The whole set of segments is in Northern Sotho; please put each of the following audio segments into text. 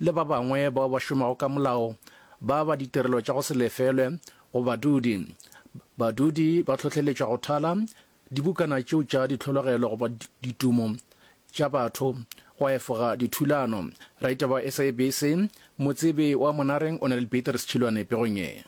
le ba bangwe bao ba šomago ka molao ba ba ditirelo tša go se lefelwe go badudi. Badudi ba tlhohleletšwa go thala dibukana tšeo tša ditlhologelo goba ditumo tša batho go efoga dithulano. Raitaba SABC, Motsebe wa Monareng o na le Beatrice Chilwane pegong ye.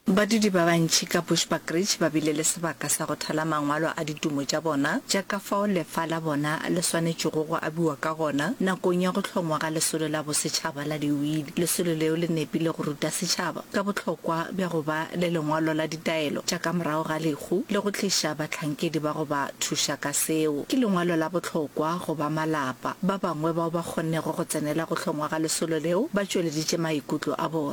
Badudi ba bantši ka Bushbuckridge ba bile le sebaka sa go thala mangwalo a ditumo tša bona tša ka fao lefa la bona le swanetšego go abiwa ka gona nakong ya go hlongwa ga Lesolo la Bosetšhaba la Diwili. Lesolo leo le nepile go ruta setšhaba ka bohlokwa bja go ba le lengwalo la ditaelo tša ka morago ga lehu le go tliša bahlankedi ba go ba thuša ka seo. Ke lengwalo la bohlokwa go ba malapa. Ba bangwe bao ba kgonnego go tsenela go hlongwa ga lesolo leo ba tšweleditše maikutlo a bona.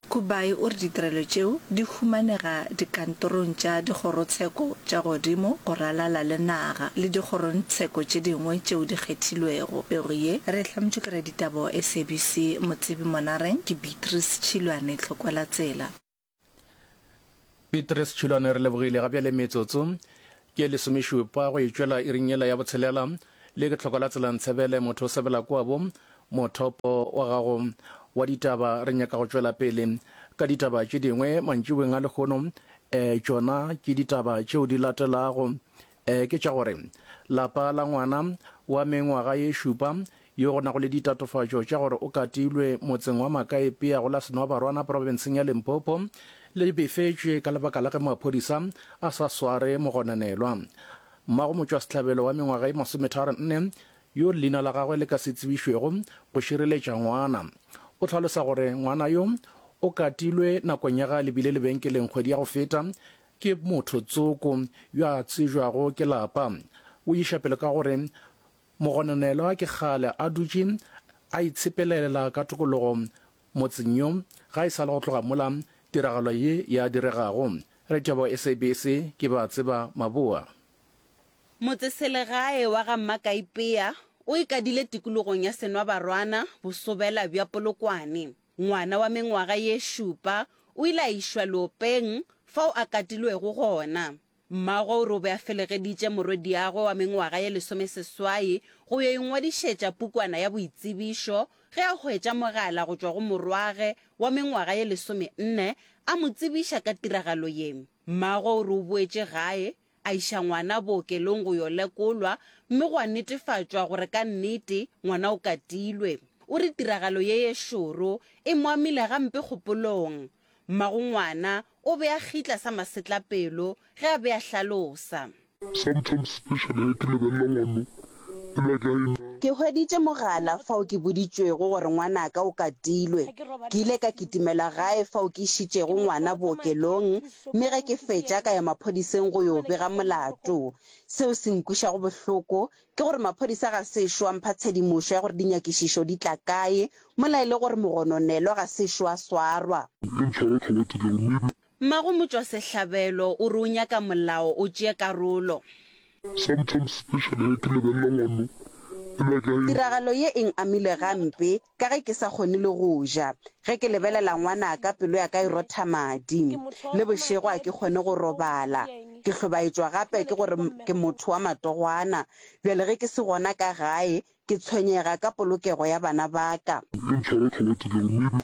Kubai o re ditirelo tšeo di humanega dikantorong tša dikgorotsheko tša godimo go ralala le naga le dikgorontsheko tše dingwe tšeo di kgethilwego. Pego ye re e hlametšwe ke raditaba wa SABC Motsebi Monareng, ke Beatrice Tšhilwane Tlhokwelatsela. Pitre Sechulane, Re lebogile ga bjale metsotso ke lesomešupa go e tšwela iring yela ya botshelela, le ke tlhoko la tsela Ntsebele, motho o sebela kua bo mothopo wa gago wa ditaba, re nyaka go tšwela pele ka ditaba tše dingwe mantšiboeng a lehono, eh tšona ke ditaba tšeo di latelago Ee, ke tša gore lapa la ngwana wa mengwaga ye šupa yo go nago le ditatofatšo tša gore o katilwe motseng wa Makaepea go la Senoabarwana profenseng ya Limpopo le befetšwe ka lebaka la ge maphodisa a sa sware mogonanelwa mmago motšwasehlabelo wa mengwaga ye masometharo nne yo leina la gagwe le ka se tsebišwego go šireletša ngwana. O tlhalosa gore ngwana yo o katilwe nakong ya ga lebile lebenkeleng kgwedi ya go feta Ke motho tsoko yo a tsebjwago ke lapa. O iša pele ka gore, Mogononelwa ke kgale a dutše a itshepelelela ka tokologo motseng yo ga e sa le go tloga mola tiragalo ye ya diregago. Re tšabo SABC, ke ba tseba maboa. Motseselegae wa ga Mmakaipea o ikadile tikologong ya Senwabarwana, bosobela bja Polokwane. Ngwana wa mengwaga ye šupa o ile a išwa leopeng fao a katilwego gona. Mmagwe o re o be a felegeditše morwediagwe wa mengwaga ye lesomeseswai go yo ingwadišetša pukwana ya boitsebišo ge a hwetša mogala go tšwa go morwagwe wa mengwaga ye lesomenne a mo tsebiša ka tiragalo ye. Mmagwe o re o boetše gae A iša ngwana bookelong go yo lekolwa mme gwa netefatšwa gore ka nnete ngwana o katilwe. O re tiragalo ye ye šoro e mo amile gampe kgopolong. Mmago ngwana o be a gitla sa masetlapelo ge a be a hlalosa. Sometimes especially ge ke lebelela ngwano Ke hweditše mogala fao ke boditšwego gore ngwanaka o katilwe. Ke ile ka kitimela gae fao ke išitšego ngwana bookelong mme ge ke fetša ka ya maphodiseng go yo bega molato. Seo se nkwišago bohloko ke gore maphodisa ga sešo a mpha tshedimošo ya gore dinyakišišo di tla kae mola e le gore mogononelwa ga sešo a swarwa. Mmago motšwasehlabelo o re o nyaka molao o tšee karolo. Sometimes specially ge ke lebelela ngwano e le wa ka e. Tiragalo ye e n-amile gampe ka ge ke sa kgone le go ja. Ge ke lebelela ngwanaka pelo ya ka e rotha madi. Le bošego ga ke kgone go robala. Ke hlobaetšwa gape ke gore ke motho wa matogwana. Bjale ge ke se gona ka gae, ke tshwenyega ka polokego ya bana ba ka. E ntshwara tlhogo tseleng mme e be.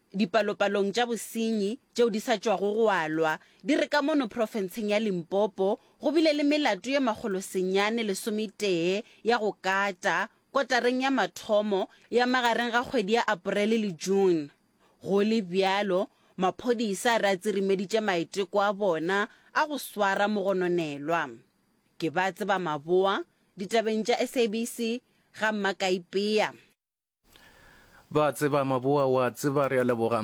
Dipalopalong tša bosenyi tšeo di sa tšwago go alwa di re ka mono profenseng ya Limpopo go bile le melato ye makgolosenyane lesometee ya go kata kotareng ya mathomo ya magareng ga kgwedi ya Aporele le June. Go le bjalo, maphodisa a re a tsirimeditše maiteko a bona a go swara mogononelwa. Ke ba tseba maboa ditabeng tša SABC ga Makaipea. ba tseba maboa wa tseba re a leboga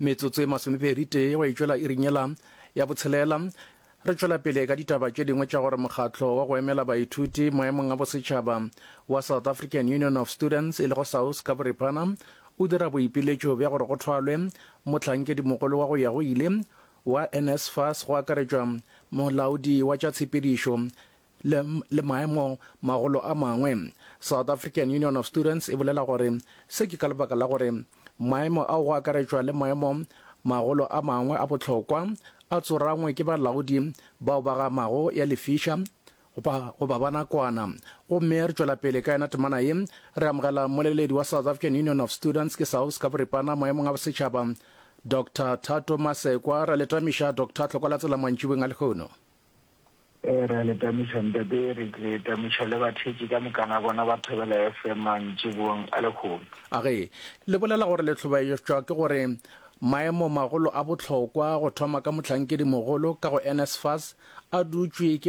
metsotso e masomepedi tee wa itšwela e rinyela ya botshelela re tšwela pele ka ditaba tše dingwe tša gore mokgatlo wa go emela baithuti maemong a bosetšhaba wa south african union of students e lego saus ka boripana o dira boipiletšo bja gore go thwalwe motlhankedimogolo wa go ya go ile wa nsfas go akaretšwa molaodi wa tša tshepedišo le, le maemo magolo a mangwe. South African Union of Students e bolela gore se ke ka lebaka la gore maemo ao go akaretšwa le maemo magolo a mangwe a bohlokwa a tsorangwe ke balaodi bao ba ga mago ya lefiša goba, goba ba nakwana. Gomme re tšwela pele ka yena temana ye, re amogela mmoleledi wa South African Union of Students ke SAUS ka boripana maemong a bosetšhaba, Doctor Thato Masekwa. Ra le tamiša, Doctor, hlokola tsela mantšibeng a lehono. Ee, re a le tamiša ntate. Re tle tamiša le bathetši ka mokana bona ba Thobela FM mantšibong a lehono. A ge le bolela gore le hlobaetšwa ke gore maemo magolo a bohlokwa go thoma ka mohlankedi mogolo ka go NSFAS a dutšwe ke